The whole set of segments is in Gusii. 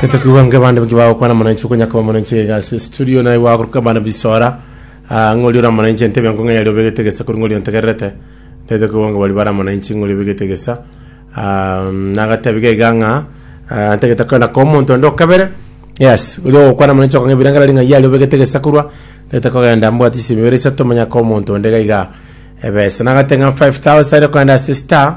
tetakiwa nge bande baki bagokwana mwananchi okonya koba mwananchi iga ase studio naye gwagoruka bana bisora ah, ng'ori ora mwananchi entebe yanko ng'eyari obegete gesa kori ng'ori ontegererete tete kiwa nge bari bara mwananchi ng'ori obegete gesa Ah, nagatebi gaiga ng'a ah, ntagete kwenda kwa omonto onde okabere yes ori ogokwana mwananchi okong'a ebiranga rari ng'ai yari obegete gesa korwa tete kogenda mbwati ase emibere isato manya kwa omonto onde gaiga ebesa nagateng'a 5000 ere kwenda ase star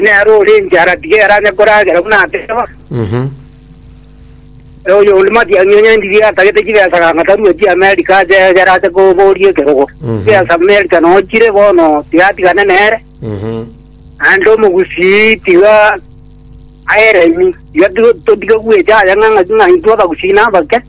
Nere ore enchara tiga eranye koragera buna ateba, Mhm. na oyonde matiang'i onye ndirie atagete chibesa ganga tarueti Amerika ache egere ase koboria ekerogo. Mhm. Chibesa Amerika nonya chire bono tiga atigane nere, Mhm. naende omogusii tiga aeremi. Tiga to- totige gwecha aye ng'a ng'a ng'a intwe abagusii nabake.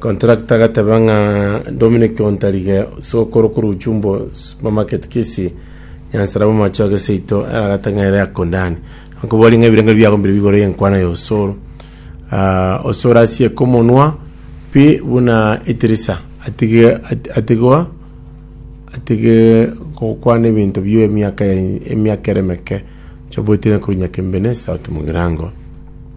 Contractor agateba ng'a Dominic Ontarige sokoro korwa Uchumbo Supermarket Kisii nyansara bw'amache oge seito eragate ng'a ere akondani akobwari ng'a ebirengererio biago mbire bigoro y'enkwana ya osoro Ah, osoro asieke omonwa pi buna etirisa atige at- atigwa atige gokwana ebinto bie emiaka ya- emiaka ere emeke chobwetire korwa nyakembene south mugirango